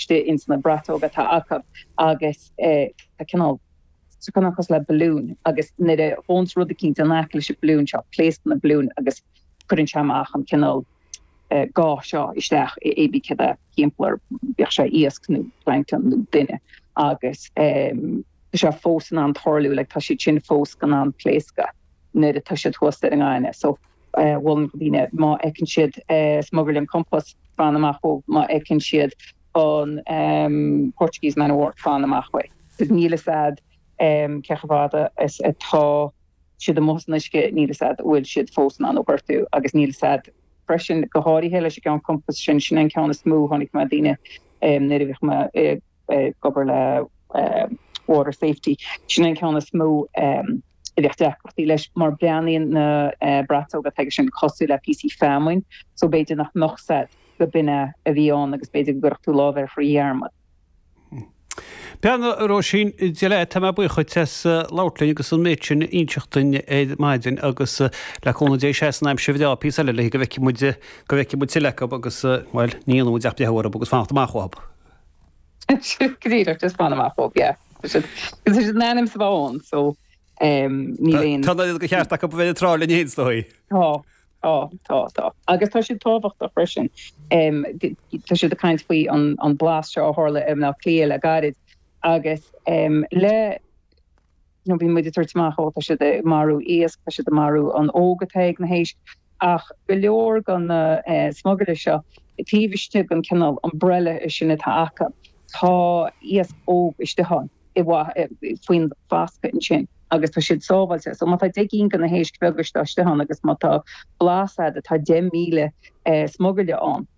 istigh ins na braiteoga atá acu agus tá cineál cosúil le balloon agus nuair a ghabhanns rud eicínt in aice leis an balloon seo, pléascann an balloon agus cuireann sé amach an cineál ga seo isteach i pé céard é thimpeall air, bíodh sé iasc nó plancton nó duine agus tá sé fós in ann tarlú like tá siad sin fós in ann pléascadh nuair atá siad thuas ar an ngaineamh so. mholfainn do dhaoine má fheiceann siad smugairle an compás fan amach uathu má fheiceann siad an Portuguese man o' war fan amach uaidh agus níl fhios a'd cé chomh fada is atá siad amuigh san uisce níl fhios a'd a bhfuil siad fós in ann thú a ghortú agus níl fhios a'd freisin go háirithe leis an gceann compás sin sin é an ceann is mó a chonaic mé daoine nuair a bhíodh mé ag ag obair le water safety. Sin an ceann is mó a bheadh deacrachtaí leis mar breathnaíonn na braiteoga atá aige sin cosúil le píosaí feamainn so b'fhéidir nach mbeadh fhios a'd gurb in é a bhí ann agus b'fhéidir go gcuirfeadh tú lámh air faoi dhearmad. Bhuel a Róisín, Dia leat, tá mé buíoch dhuit as labhairt linn agus an méid sin a inseacht duinn ar maidin agus le cúnamh Dé seasfaidh an aimsir bhreá píosa eile le go bhfeicfidh muid, go bhfeicfidh muid tuilleadh acu agus, bhuel, ní dhéanfaidh muid ach breathnú orthu agus fanacht amach uathu. Go díreach agus fan amach uathu yeah. Tá siad, cos tá siad in ainm is a bheith ann so níl aon. Tá an oiread de cheart acu a bheith ar an trá linn fhéin is dóigh. Tá, tá, tá, tá. Agus tá siad tábhachtach freisin. Tá siad ag caint faoi an blás seo a tharla i mBleá Cliath le gairid agus le nó bíonn muid ag tabhairt amach, ó, tá siad ag marú iasc, tá siad ag marú an óg atá ag na héisc. Ach go leor de na smugairle seo, taobh istigh den chineál umbrella sin atá acu, tá iasc óg istigh ann, i bhfad, faoin bhfascadh ansin agus tá siad sábháilte. So má tá deich gcinn de na héisc bheaga seo istigh ann agus má tá blás a'd atá deich míle smugairle ann,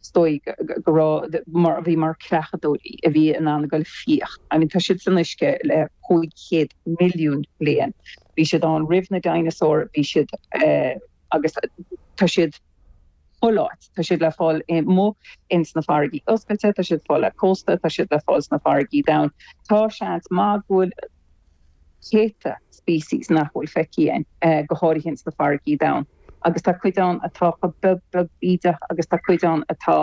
is dóigh go raibh, mar a bhí, mar chreachadóirí a bhí in ann a ghoil ag fiach. I mean, tá siad san uisce le cúig chéad milliún bliain. Bhí siad ann roimh na dinosaur, bhí siad eh, agus tá siad chuile áit. Tá siad le fáil i mo, ins na farraigí oscailte, tá siad fáil le cósta, tá siad le fáil sna farraigí domhain. Tá seans maith go bhfuil. céadta species nach bhfuil feicthe againn, go háirithe ins na farraigí domhain, agus tá cuid ann atá chomh beag beag bídeach agus tá cuid ann atá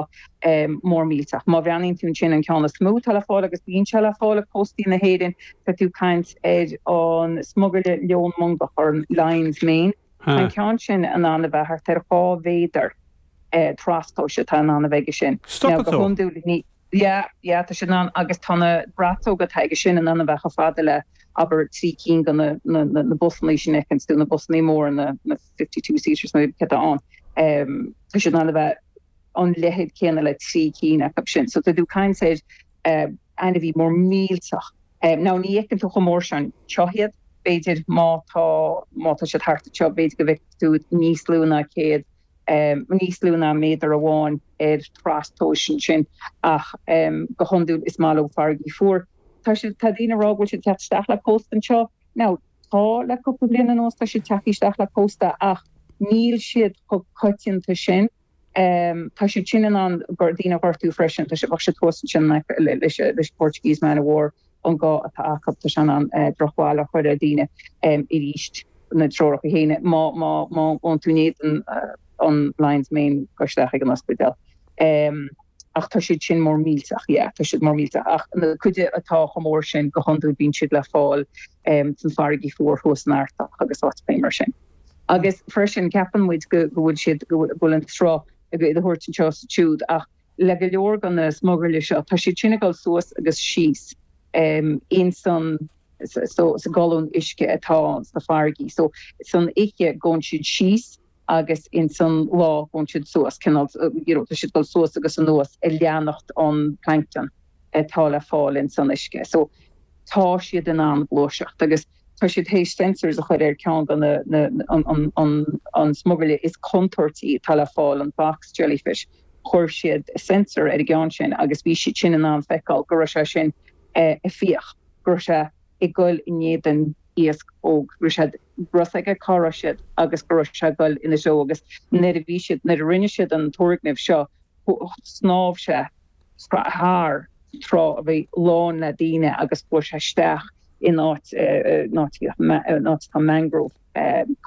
mór millteach. Má bhreathnaíonn tú ansin, an ceann is mó atá le fáil agus bíonn sé le fáil ag cóstaí na hÉireann, tá tú ag caint ar an smugairle leon mongach or an lion's mane. Tá an ceann sin in ann a bheith thart ar dhá mhéadar trastomhais atá in ann a bheith aige sin. Now go hiondúil ní. Yeah, yeah, tá sé in ann agus tá na braiteoga atá aige sin in ann a bheith chomh fada le abair trí cinn de na busannaí sin a fheiceanns tú, na busannaí móra, na fifty two seaters nó cad atá ann. Tá siad in ann a bheith an leithead céanna le trí cinn acu sin. So tá tú ag caint ar ainmhí mór millteach. Now ní fheiceann tú chomh mór sin anseo iad, b'fhéidir má tá siad thart anseo b'fhéidir go bhfeicfidh tú iad níos lú ná céad níos lú ná méadar amháin ar trastomhas ansin, ach go hiondúil is maith leo farraigí fuar. Tá siad, tá daoine ag rá go bhfuil siad ag teacht isteach le cósta anseo. Now, tá le cúpla bliain anuas, tá siad ag teacht isteach le cósta ach níl siad chomh coitianta sin. Tá siad sin in ann daoine a ghortú freisin. Tá siad, bheadh siad thuas ansin in aice leis an Portuguese Man o' War. an ga atá acu. Tá sé in ann drochbhail a chur ar dhaoine arís. na treoracha céanna, má ghabhann tú in éadan an lion's mane, gabh isteach ag an ospidéal. Ach tá siad sin mór millteach, yeah, tá siad mór millteach. Ach an chuid atá chomh mór sin, go hiondúil bíonn siad le fáil san farraigí fuar thuas san Artach agus áiteachaí mar sin. Agus freisin, ceapann muid go bhfuil siad, go bhfuil an sruth á thabhairt anseo is ansiúd ach. le go leor de na smugairle seo, tá siad sin ag dul suas agus síos ins an, so, sa gcolún uisce atá sna farraigí. So, san oiche gabhann siad síos agus ins an lá gabhann siad suas, cineál, you know, tá siad ag dul suas agus anuas ag leanacht an plancton atá le fáil ins an uisce. So, tá siad in ann gluaiseacht agus. tá siad théis sensors a chur ar cheann de na an smugairle is contúirtí atá le fáil, an box jellyfish. Chuir siad sensor ar an gceann sin agus bhí siad sin in ann feiceáil go raibh sé sin ag fiach, go raibh sé ag gol i ndiaidh an iasc óg, go raibh a fhios aige cá raibh siad agus go raibh sé ag gol ina dtreo agus nuair a bhí siad, nuair a rinne siad an turgnamh seo snámh sé thar trá a bhí lán le daoine agus chuaigh sé isteach in áit atá mangrove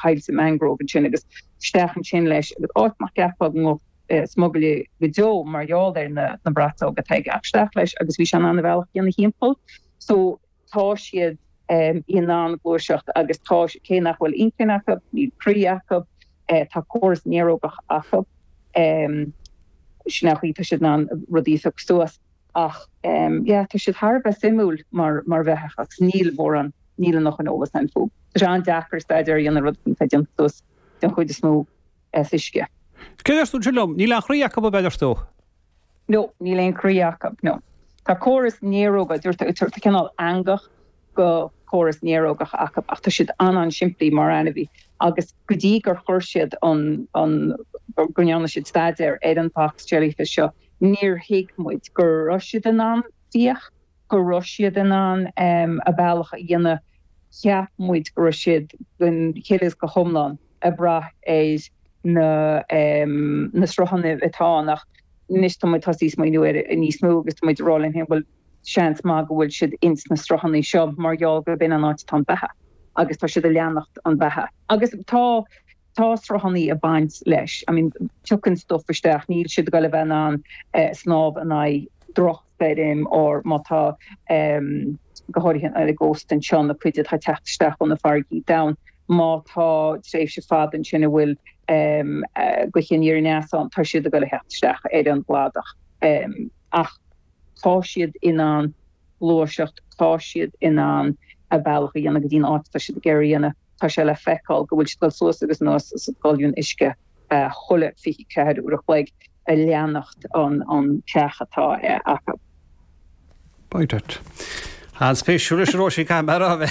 coillte mangrove ansin agus isteach ansin leis agus áit nach gceapfá go mbeadh smugairle go deo mar gheall ar na braiteoga atá aige ach isteach leis agus bhí sé in ann a bhealach a dhéanamh thimpeall so tá siad in ann gluaiseacht agus tá, cé nach bhfuil inchinn acu, níl croí acu, tá córas néarógach acu, sin é an chaoi, tá siad in ann rudaí a phiocadh suas ach yeah tá siad thar a bheith suimiúil mar bheathach agus níl mórán, níl an oiread sin eolas a'inn fúthu. Tá sé an-deacair staidéar a dhéanamh ar rud atá déanta suas den chuid is mó as uisce. Céard a dúirt tú ansin liom, níl aon chroí acu, ab ea a dúirt tú? nó níl aon chroí acu, nó tá córas néaróga, dúirt tú, tá cineál eangach de chóras néarógach acu, ach tá siad an-an-simplí mar ainmhí agus go dtí gur chuir siad an, an, go ndearna siad staidéar ar an box jellyfish seo, níor thuig muid go raibh siad in ann fiach. go raibh siad in ann a bealach a dhéanamh, cheap muid go raibh siad gan chiall agus go hiomlán ag brath ar na sruthanna atá ann ach anois tá muid tosaithe ag smaoineamh air níos mó agus tá muid ag rá linn féin bhuel seans maith go bhfuil siad ins na sruthanna seo mar gheall gurb in é an áit atá an beatha agus tá siad ag leanacht an bheatha agus tá tá sruthannaí ag baint leis, I mean tiocann stuff isteach, níl siad ag goil a bheith in ann snámh in aghaidh drochstoirm or má tá em go háirithe ar an gcósta anseo na cuid atá ag teacht isteach ó na farraigí domhain, má tá tréimhse fada ansin a bhfuil em gaoithe aniar aneas ann, tá siad ag goil a theacht isteach ar an gcladach em ach tá siad in ann. gluaiseacht tá siad in ann a bealach a dhéanamh go dtí an áit atá siad ag iarraidh a dhéanamh, tá sé le feiceáil go bhfuil siad ag dul suas agus anuas sa gcolún uisce chuile 24 uair a chloig ag leanacht an bheatha atá acu. An-spéisiúil, a Róisín, caithfidh mé a rá.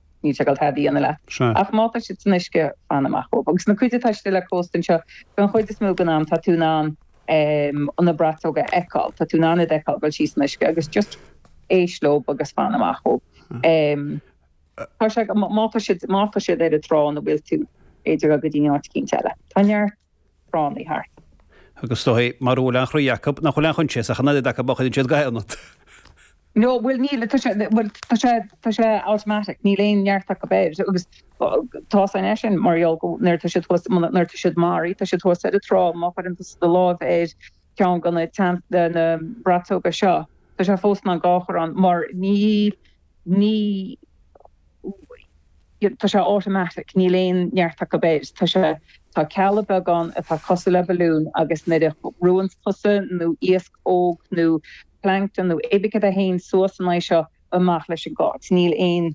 Níl sé ag goil tada a dhéanamh leat. Sea. Ach má tá siad san uisce, fan amach uathu. Agus na cuid atá istigh le cósta anseo, don chuid is mó den am, tá tú in ann na braiteogaí a fheiceáil. Tá tú in ann iad a fheiceáil ag dul síos san uisce agus just éist leo agus fan amach uathu. Tá sé, má tá siad, má tá siad ar an trá ina bhfuil tú, téirigh go dtí áit eicínt eile. Tá neart. tránna thart. Agus is dóigh mura bhfuil aon chroí acu, nach bhfuil aon choinsias ach an oiread acu má chuireann siad ga ionat. No, bhuel, níl, tá sé, bhuel, tá sé, tá sé automatic, níl aon neart acu air agus tá sé, is é sin mar gheall go, nuair atá siad thuas, nuair atá siad maraí, tá siad thuas ar an trá, má chuireann tusa do lámh ar cheann de na, de na braiteoga seo, tá sé fós in ann ga a chur ann mar ní, ní tá sé automatic, níl aon neart acu air, tá sé, tá cealla beag ann atá cosúil le balloon agus nuair a bhrúanns tusa nó iasc óg nó plankton nó cibé cén rud é féin suas in aghaidh seo, amach leis an nga, níl aon,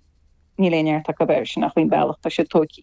níl aon neart acu air, sin é an bealach atá siad tógtha.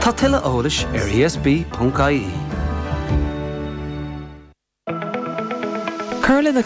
Tá tuilleadh eolais ar ESB.ie.